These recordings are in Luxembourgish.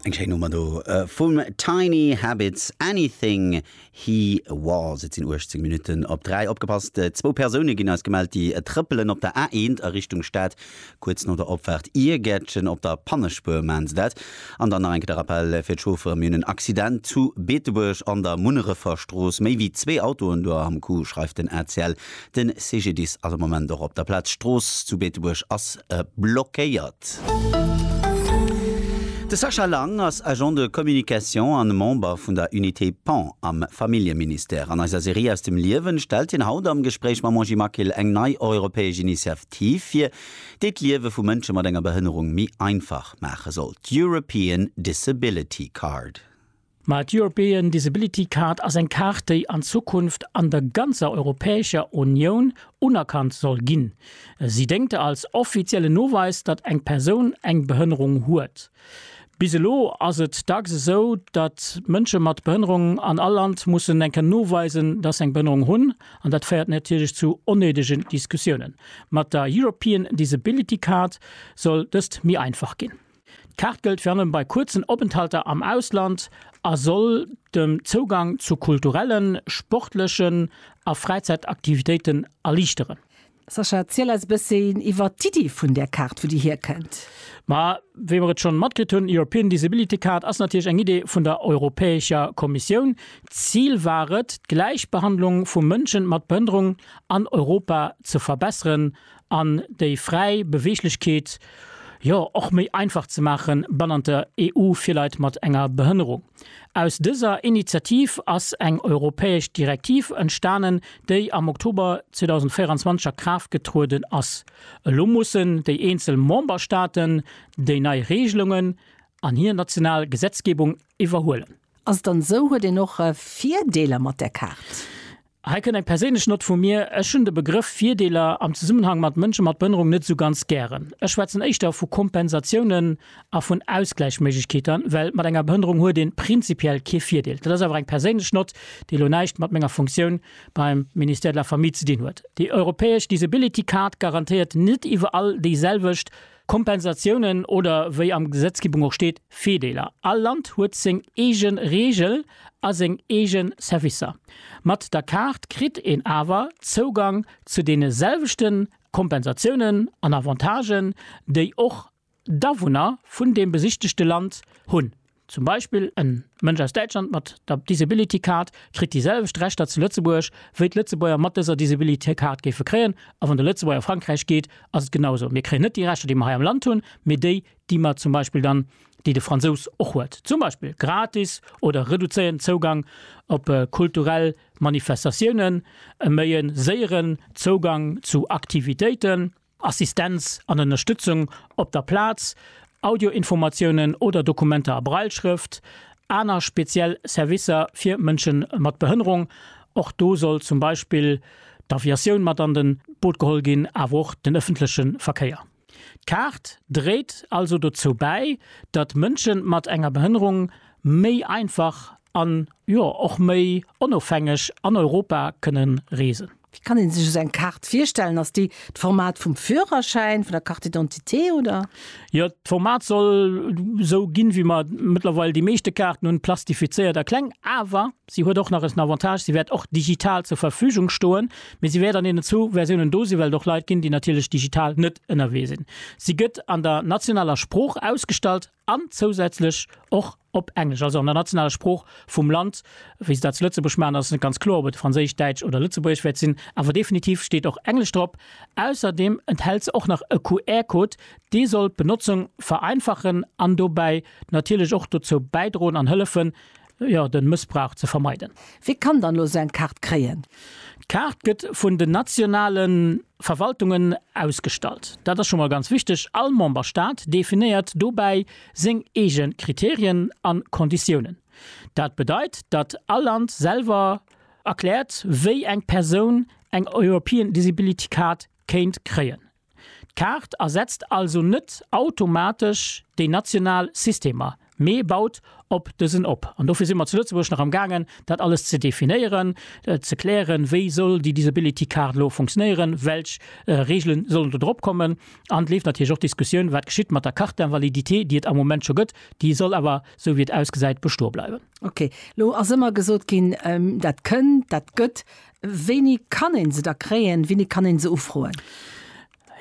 Eng schéin Nummer do vum Tiny Habits, Anything He Was. Et sinn 18 Minutten op 3. Opgepasst, zwou Persoune ginn eis gemellt, déi trëppelen op der A1 a Richtung Stad. Kuerz no der Opfaart Iergärtchen op der Pannespuer maachen se dat. An dann nach eng Kéier de Rappell fir d'Chauffere, Mir hunn en Accident zu Beetebuerg an der Munnerefer Strooss. Méi wéi zwee Autoen do am Coup, schreift den ACL. Den CGDIS ass am Moment och op der Plaz. D'Strooss zu Beetebuerg ass blockéiert. De Sascha Lang ass Agent de Communication an Member vun der Unité Pan am Familljeministère. An eiser Serie Aus dem Liewen stellt hien haut am Gespréich mam Monji Makil eng nei europäesch Initiativ vir, déi d'Liewe vu Mënsche mat enger Behënnerung méi einfach maache soll, d'European Disability Card. Mä d'European Disability Card ass eng Kaart, déi an Zukunft an der ganzer Europäescher Unioun unerkannt soll ginn. Si déngt als offiziellen Noweis, datt eng Persoun eng Behënnerung huet. Bis elo ass et dacks esou, datt Mënsche mat Behënnerung an all Land mussen eng Kéier noweisen, datt se eng Behënnerung hunn. An dat féiert natierlech zu onnéidegen Diskussiounen. Mat der European Disability Card soll dëst méi einfach ginn. D'Kaart gëllt virun allem bei kuerzen Openthalter am Ausland a soll den Zougang zu kulturellen, sportlechen a Fräizäitaktivitéiten erliichteren. Sascha, ziel eis e bësschen iwwert d'Iddi vun där Kaart, wou déi hierkënnt. Ma wéi mer et schonn matkritt hunn, European Disability Card ass natierlech eng Idee vun der Europäescher Kommissioun. D'Zil war et, d'Gläichbehandlung vu Mënsche mat Behënnerung an Europa ze verbesseren an déi fräi Beweeglechkeet jo och méi einfach ze maachen bannent der EU fir Leit mat enger Behënnerung. Aus dëser Initiativ ass eng europäesch Direktiv entstanen, déi am Oktober 2024 a Kraaft getrueden ass. Elo mussen déi eenzel Memberstaaten déi nei Reegelungen an hir national Gesetzgebung iwwerhuelen. Ass et dann esou, huet een och Virdeeler mat där Kaart? Hei kënnt eng perséinlech Nott vu mir, Ech hunn de Begrëff Virdeeler am Zesummenhang mat Mënsche mat Behënnerung net esou ganz gären. Ech schwätzen éischter vu Kompensatiounen a vun Ausgläichméiglechkeeter, well mat enger Behënnerung huet een prinzipiell kee Virdeel. Dat ass awer eng perséinlech Nott, déi elo näischt mat menger Funktioun beim Ministère de la Famille ze dinn huet. Déi europäesch Disability Card garantéiert net iwwerall déiselwecht Kompensatiounen oder, wéi am Gesetzgebung och steet, Virdeeler. All Land huet seng eege Reegel a seng eege Servicer. Mat der Kaart kritt een awer Zougang zu deene selwechte Kompensatiounen an Avantagen, déi och d'Awunner vun deem besichtegte Land hunn. Zum Beispill en Mënsch aus Däitschland mat der Disability Card kritt déi selwecht Rechter zu Lëtzebuerg wéi d'Lëtzebuerger mat dëser Disability Card géife kréien. A wann de Lëtzebuerger a Frankräich geet, ass et genau esou. Mir kréien net déi Rechter déi mer hei am Land hunn, mee déi déi mer zum Beispill dann, déi de Fransous och huet, zum Beispill gratis oder reduzéierten Zougang op kulturell Manifestatiounen, e méi e séieren Zougang zu Aktivitéiten, Assistenz an Ënnerstëtzung op der Plaz, Audioinformatiounen oder Dokumenter a Brailleschrëft, aner speziell Servicer fir Mënsche mat Behënnerung, och do soll zum Beispill d'Aviatioun mat an de Boot geholl ginn, awer och den ëffentleche Verkéier. D'Kaart dréit also dozou bäi, datt Mënsche mat enger Behënnerung méi einfach an, jo, och méi onofhängeg an Europa kënnen reesen. Wéi kann een sech esou eng Kaart virstellen? Ass déi d'Format vum Führerschäin, vun der Carte d'identité, oder? Jo, d'Format soll esou ginn, wéi mer mëttlerweil déi meeschte Kaarten hunn, plastifizéiert a kleng. Awer si huet och nach en Avantage, si wäert och digital zur Verfügung stoen, mee si wäert an deenen zwou Versiounen do sinn, well et och Leit ginn, déi natierlech digital net ënnerwee sinn. Si gëtt an der nationaler Sprooch ausgestallt. an zousätzlech och op Englesch, also an der nationaler Sprooch vum Land, wéi se dat zu Lëtzebuerg maachen, ass et net ganz kloer, ob et Franséisch, Däitsch oder Lëtzebuergesch wäert sinn, awer definitiv steet och Englesch drop. Ausserdeem enthält se och nach e QR-Code, dee soll d'Benotzung vereinfachen an dobäi natierlech och dozou bäidroen an hëllefen, jo, den Mëssbrauch ze vermeiden. Wie kann dann elo esou eng Kaart kréien? D'Kaart gëtt vun den nationalen Verwaltungen ausgestallt. Dat ass scho mol ganz wichteg. All Memberstaat definéiert dobäi seng eegen Kriterien an Konditiounen. Dat bedeit, datt all Land selwer erkläert wéi eng Persoun eng European Disability Card kéint kréien. D'Kaart ersetzt also net automatesch déi national Systemer, mee baut op dësen op. An dofir si mer zu Lëtzebuerg nach am gaangen, dat alles ze definéieren, ze klären, wéi soll déi Disability Card elo funktionéieren, welch Regele sollen do drop kommen. An et leeft natierlech och d'Diskussioun, wat geschitt mat der Carte d'invalidité, déi et am Moment scho gëtt, déi soll awer, esou wéi et ausgesäit, bestoe bleiwen. Okay, elo ass ëmmer gesot ginn, dat kënn, dat gëtt. Wéini kann een se da kréien? Wéini kann een se ufroen?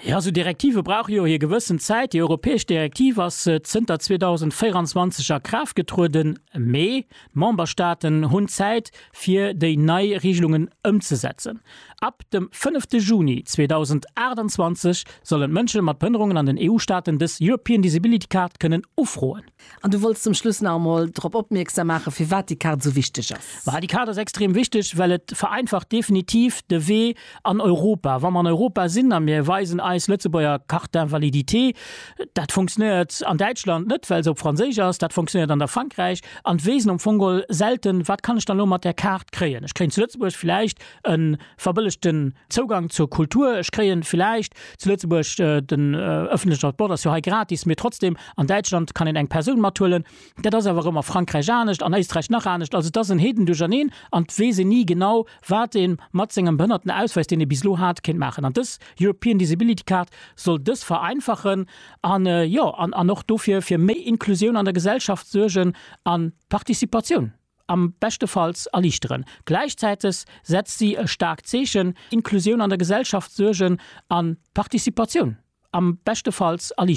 Jo, esou Direktive brauche jo hir gewëssen Zäit. Déi europäesch Direktiv ass zënter 2024 a Kraaft getrueden, mee d'Memberstaaten hunn Zäit, fir déi nei Reegelungen ëmzesetzen. Ab dem fënnefte Juni 2028 sollen d'Mënsche mat Behënnerungen an den EU-Staaten dës European Disability Card kënnen ufroen. An du wolls zum Schluss nach emol drop opmierksam maachen, firwat déi Kaart esou wichteg ass. Ma déi Kaart ass extrem wichteg, well et vereinfacht definitiv de Wee an Europa. Wa mer an Europa sinn a mir weisen eis Lëtzebuerger Carte d'invalidité, dat funktionéiert an Däitschland net, well se op Franséisch ass, dat funktionéiert an der Frankräich an d'Weesen am Fong selten, wat kann ech dann elo mat där Kaart kréien. Ech kréien zu Lëtzebuerg vläicht e verbëllegten Zougang zur Kultur, ech kréien villäicht zu Lëtzebuerg, den ëffentlechen Transport ass jo hei gratis, mee trotzdem, an Däitschland kann een eng Persoun mathuelen. Dat ass awer erëm a Frankräich anescht, an Éisträich nach anescht. Also et ass en Heedendurcherneen an et weess een ni genau, wat ee mat sengem Behënnertenausweis, deen ee bis elo hat, kéint maachen. An dës European Disability Card soll dës vereinfachen an, jo, an och dofir fir méi Inklusioun an der Gesellschaft suergen a Participatioun. am beschtefalls erliichteren. Gläichzäiteg setzt si e staarkt Zeechen, Inklusioun an der Gesellschaft suergen a Participatioun am beschtefalls erliichteren.